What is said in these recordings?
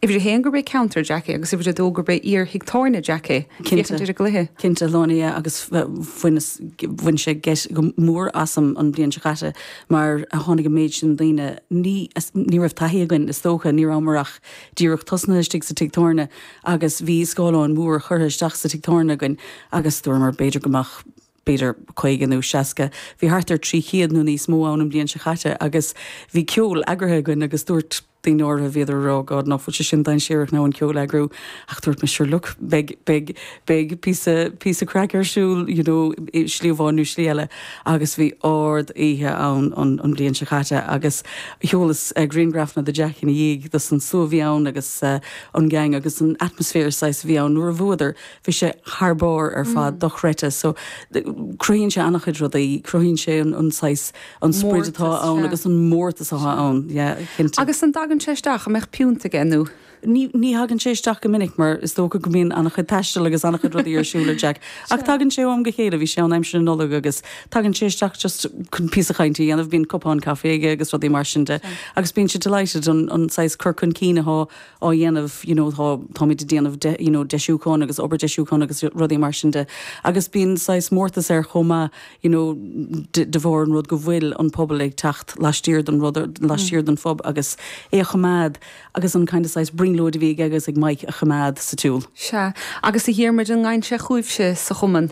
Uimhir a haon gurb é ceantar Jack é agus uimhir a dó gurb é iar thig tábhairne Jack é. Féachaint ar an gcluiche. Cinnte, luann é agus bhain sé geit go mór asam an bhliain seo caite mar tháinig an méid sin daoine. Ní raibh taithí againn is dócha, ní rabhamar ach díreach tosnaithe istigh sa tigh tábhairne agus bhí scáileán mór curtha isteach sa tigh tábhairne againn agus dúramar b'fhéidir go mbeadh, b'fhéidir caoga nó seasca, bhí thart ar trí chéad nó níos mó ann an bhliain seo chaite agus bhí ceol eagraithe againn agus dúirt daoine áirithe, bhíodar a rá oh God nach bhfuil sé sin dainséarach now an ceol a eagrú ach dúirt mé sure look beidh, beidh, beidh píosa, píosa craic ar siúl you know i slí amháin nó slí eile agus bhí ard oíche ann an, an bhliain seo chaite agus sheolas grianghrafanna do Jack ina dhiaidh de an slua a bhí ann agus an gang agus an atmosphere saghas a bhí ann nuair a bhuadar bhí sé thar barr ar fad, dochreidte. So cruthaíonn sé an-chuid rudaí, cruthaíonn sé an saghas, an sprid atá ann agus an mórtas atá ann, yeah, cinnte. Agus an dtagann sé isteach, an mbeadh piúnt aige nó? Ní, ní thagann sé isteach go minic mar is dócha go mbíonn an-chuid taistil agus an-chuid rudaí ar siúl ag Jack. Ach tagann sé ó am go chéile, bhí sé ann aimsir na Nollag agus tagann sé isteach just chun píosa cainte a dhéanamh, bíonn cupán caife aige agus rudaí mar sin de. Agus bíonn sé delighted an, an saghas cur chun cinn athá, á dhéanamh you know atá táimid ag déanamh de you know deisiúcháin agus obair deisiúcháin agus rudaí mar sin de agus bíonn saghas mórtas air chomh maith you know de, de bharr an rud go bhfuil an pobal ag teacht laistiar den rud laistiar den phub agus é á choimeád agus an kind of saghas brionglóid a bhí aige agus ag Mike á choimeád sa tsiúl. Sea, agus a Dhiarmuid, an ngabhann sé chugaibhse sa chumann?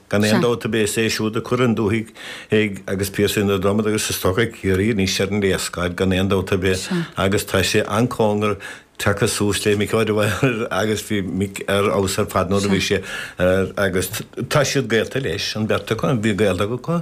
Gan aon dabht ar bith is é siúd a chuir an dúthaigh ag agus Piarsaigh na Dromoda agus is dócha Ciarraí anois ar an léarscáil gan aon dabht ar bith agus tá sé an-chóngarach tagtha suas le Mick O'Dwyer agus bhí Mick ar fheabhas ar fad nuair a bhí sé ar agus tá siad gaolta leis an bheirt acu, an bhí gaol acu?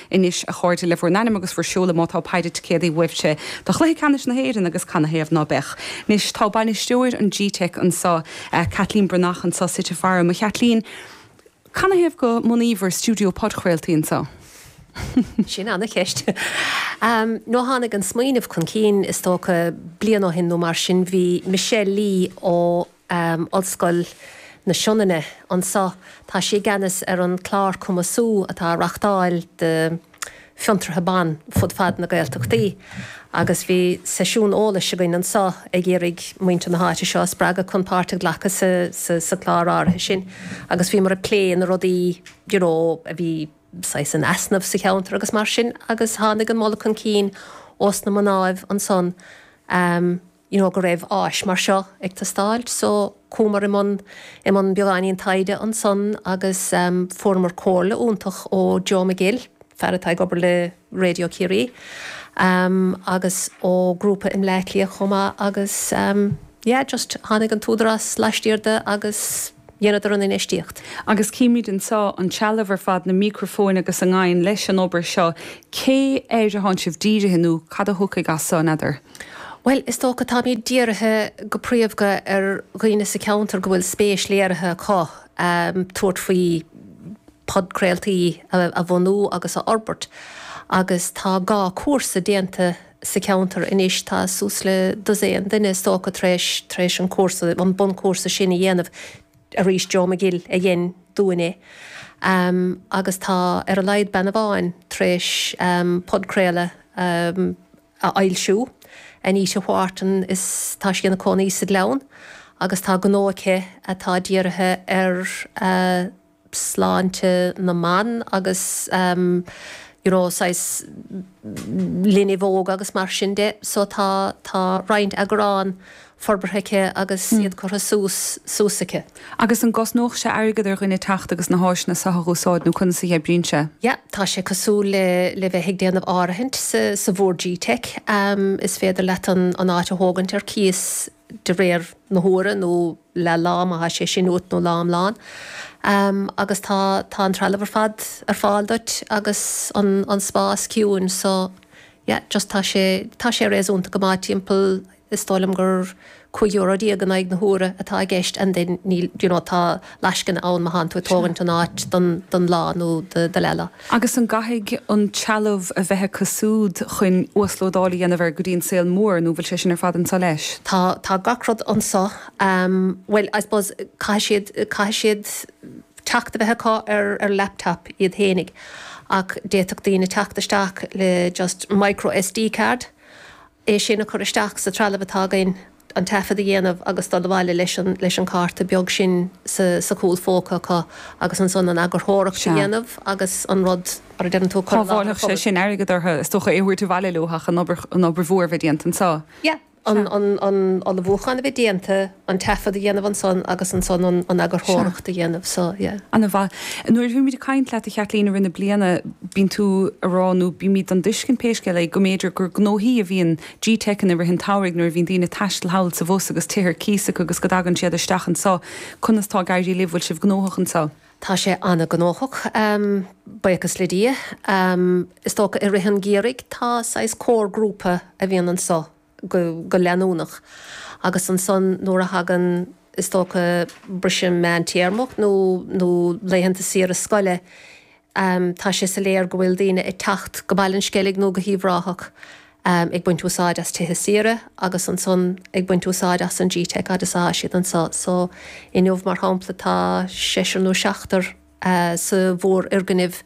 Anois, a chairde, le bhur n-ainmneacha agus bhur seoladh má tá péire ticéadaí uaibhse do chluiche ceannais na hÉireann agus canathaobh ná beadh? Anois, tá bainisteoir an gteic anseo, Caitlín Breathnach anseo suite faram. A Chaitlín, canathaobh go mbunaíobhair stiúideo podchraoltaí anseo? Sin an-cheist. Nó tháinig an smaoineamh chun cinn, is dócha, bliain ó shin nó mar sin. Bhí Michelle Lee ó. um Ollscoil na Sionainne anseo. Tá sí i gceannas ar an chlár cumasú atá á reáchtáil do fhiontraithe ban fud fad na Gaeltachtaí agus bhí seisiún eolais againn anseo ag iarraidh muintir na háite seo a spreagadh chun páirt a ghlacadh sa sa chlár áirithe sin agus bhíomar ag plé na rudaí you know a bhí saghas in easnamh sa cheantar agus mar sin agus tháinig an moladh chun cinn ós na mnáibh ansan um you know, go raibh áis mar seo ag teastáil so chuamar i mbun i mbun beagáinín taighde ansan agus fuaireamar comhairle iontach ó Joe McGill, fear atá ag obair le Raidió Ciarraí, agus ó grúpa i mBleá Cliath chomh maith agus yeah, just tháinig an t-údarás laistiar de agus. dheineadar an infheistíocht. Agus címid anseo, an trealamh ar fad, na mícrafóin agus a ngabhann leis an obair seo, cé air atánn sibh dírithe nó cad a thiocfaidh as seo, n'fheadar? Bhuel, is dócha táimid dírithe go príomhdha ar dhaoine sa cheantar go bhfuil spéis léirithe acu tabhairt faoi podcraoltaí a bhunú agus a fhorbairt agus tá dhá chúrsa déanta sa cheantar anois. Tá suas le dosaen duine, is dócha, tar éis, tar éis an cúrsa, an bunchúrsa sin a dhéanamh arís. Joe McGill a dhein dúinn é. Agus tá ar a laghad bean amháin tar éis podchraoladh a fhoilsiú, Anita Wharton, is tá sí ina cónaí sa Ghleann agus tá gnó aici atá dírithe ar, sláinte na mban agus you know saghas linbh óga agus mar sin de so tá tá roinnt eagrán forbartha aici agus iad curtha suas suas aici. Agus an gcosnódh sé airgead ar dhuine teacht agus na háiseanna seo a úsáid nó conas a oibríonn sé? Yeah tá sé cosúil le le bheith ag déanamh áirithint sa sa bhord G-Teic. Is féidir leat an an áit a thógaint ar cíos de réir na huaire nó leath lá má tá sé sin uait nó lá iomlán agus tá tá an trealamh ar fad ar fáil duit agus an an spás ciúin so yeah just tá sé tá sé réasúnta go maith timpeall is dóigh liom gur cúig euro déag in aghaidh na huaire atá i gceist and then níl you know tá lascaine ann má thánn tú ag tógaint an áit don lá nó do leath lá. Agus an gcaithfidh an trealamh a bheith acu súd chuin uaslódáil a dhéanamh air go dtí an saol mór nó bhfuil sé sin ar fad anseo leis? Tá, tá gach rud anseo. Bhuel I suppose caithfidh siad, caithfidh siad teacht a bheith acu ar ar laptop iad fhéinig ach d'fhéadfadh daoine teacht isteach le just micro SD card, é sin a chur isteach sa trealamh atá againn. an taifead a dhéanamh agus dul abhaile leis an cárta beag sin sa chúlphóca acu agus ansan an eagarthóireacht a dhéanamh agus an rud mar a deireann tú a chur i láthair an phobail. Shábhálfadh sé sin airgead orthu is dócha, é a thabhairt abhaile leo ach an obair mhór a bheith déanta anseo. Yeah. An ullmhúchán a bheith déanta, an taifead a dhéanamh ansan agus ansan an eagarthóireacht a dhéanamh. So, yeah. Ana-mhaith. Nuair a bhímid ag caint leat, a Chaitlín, i rith na bliana bíonn tú ag rá nó bímid den dtuiscint, pé scéal é, go mb'fhéidir gur gnóthaí a bhíonn Gteic ann i rith an tsamhraidh nuair a bhíonn daoine ag taisteal thall is abhus agus tithe ar cíos acu agus go dtagann siad isteach anso. Conas tá ag éirí libh? Bhfuil sibh gnóthach anso? Tá sé an-gnóthach, buíochas le Dia. Is dócha i rith an gheimhridh tá saghas core grúpa a bhíonn anso go leanúnach agus ansan nuair a thagann is dócha briseadh meántéarmach nó laethanta saoire scoile Am, Tá sé soiléar go bhfuil daoine ag teacht go Baile an Sceilg nó go hUíbh Ráthach ag baint úsáid as tithe saoire agus ansan ag baint úsáid as an Gteic fhad is atá siad anso. So, inniu mar shampla tá seisear nó seachtar sa mhórfhoirgneamh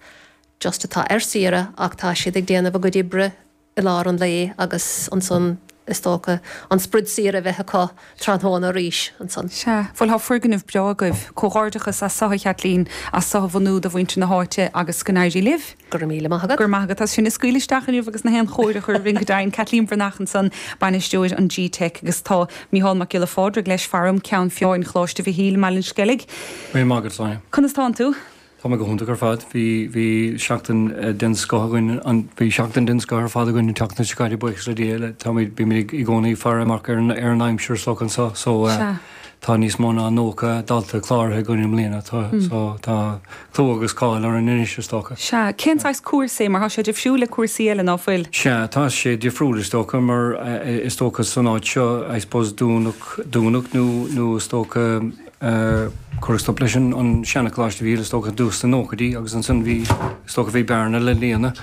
just atá ar saoire ach tá siad ag déanamh a gcuid oibre, i lár an lae agus ansan is dócha an sprid saoire a bheith acu tráthnóna arís ansan. Sea. Bhuel tá foirgneamh breá agaibh. Comhghairdeachas as ucht, a Chaitlín, as ucht a bhunú do mhuintir na háite agus go n-éirí libh. Go raibh míle maith agat. Go raibh maith agat as sinn a scaoileadh isteach inniu agus na haon chóir a chur orainn go deimhin. Caitlín Bhreathnach ansan, bainisteoir an GTeic agus tá Micheál Mac Giolla Phádraig leis, faram, ceann foirne Choláiste Mhichíl i mBaile an Sceilg. Míle maith agat Sonia. Conas tánn tú? Tá mé go hiontach ar fad. Bhí, bhí seachtain den scoth againn an, bhí seachtain den scoth ar fad againn an tseachtain seo caite buíochas le Dia, le, táimid, bímid i gcónaí ag faire amach ar an, ar an aimsir is dócha anso so eh Sea. tá níos mó ná nócha dalta cláraithe againn i mbliana tá, so tá clú agus cáil orainn anois is dócha. Sea. Cén saghas cúrsaí, mar tá sé difriúil le cúrsaí eile ná fuil? Sea, tá sé difriúil is dócha mar eh is dócha san áit seo I suppose dúnadh, dúnadh nó, nó is dócha, eh, cuireadh stop leis an, an seanacoláiste a bhí, is dócha, i dtús na nóchaidí agus ansan bhí, is dócha, bhí bearna le líonadh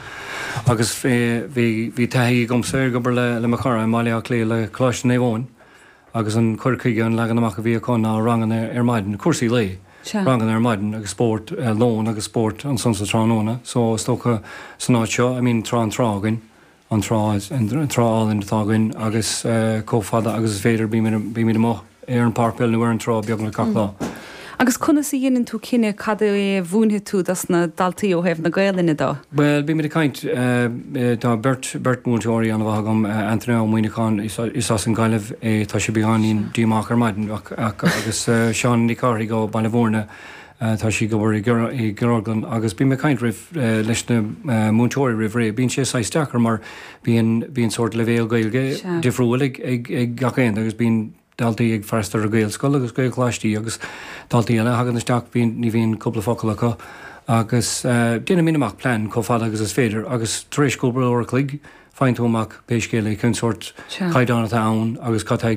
agus eh, bhí, bhí taithí agamsa ag obair le, le mo chara i mBaile Átha Cliath le Coláiste Naomh Eoin agus an cur chuige, an leagan amach a bhí acu ná ranganna ar maidin, cúrsaí lae, Sea. ranganna ar maidin agus spórt eh, lón agus spórt ansan sa tráthnóna so is dócha san áit seo, I mean tá an trá againn. an trá, an trá álainn atá againn agus chomh fada agus is féidir bímid amuigh ar an pháirc peile nó ar an trá beagnach gach lá. Agus conas a dhéanann tú cinneadh cad é a mhúinfidh tú dos na daltaí ó thaobh na Gaolainne do? Bhuel, bímid ag caint, tá beirt, beirt mhúinteoirí ana mhaith agam, Antaine Ó Muimhneacháin, is as an Gaillimh é, tá sé beagáinín díomách ar maidin, agus Seána Nic Cárthaigh ó Baile Mhúirne, Tá sí ag obair i gceardlann agus bím ag caint roimh, leis na múinteoirí roimh ré. Bíonn sé saghas deacair mar bíonn, bíonn sórt leibhéal Gaeilge difriúil ag, ag, ag gach aon, agus bíonn daltaí ag freastal ar Ghaelscoil agus Gaelcholáistí agus daltaí eile a thagann isteach bíonn, ní bhíonn cúpla focal acu agus déanaimid amach plean chomh fada agus is féidir agus tar éis cúpla uair a chloig faigheann tú amach pé scéal é cén sórt caighdeán atá ann agus cad tá ag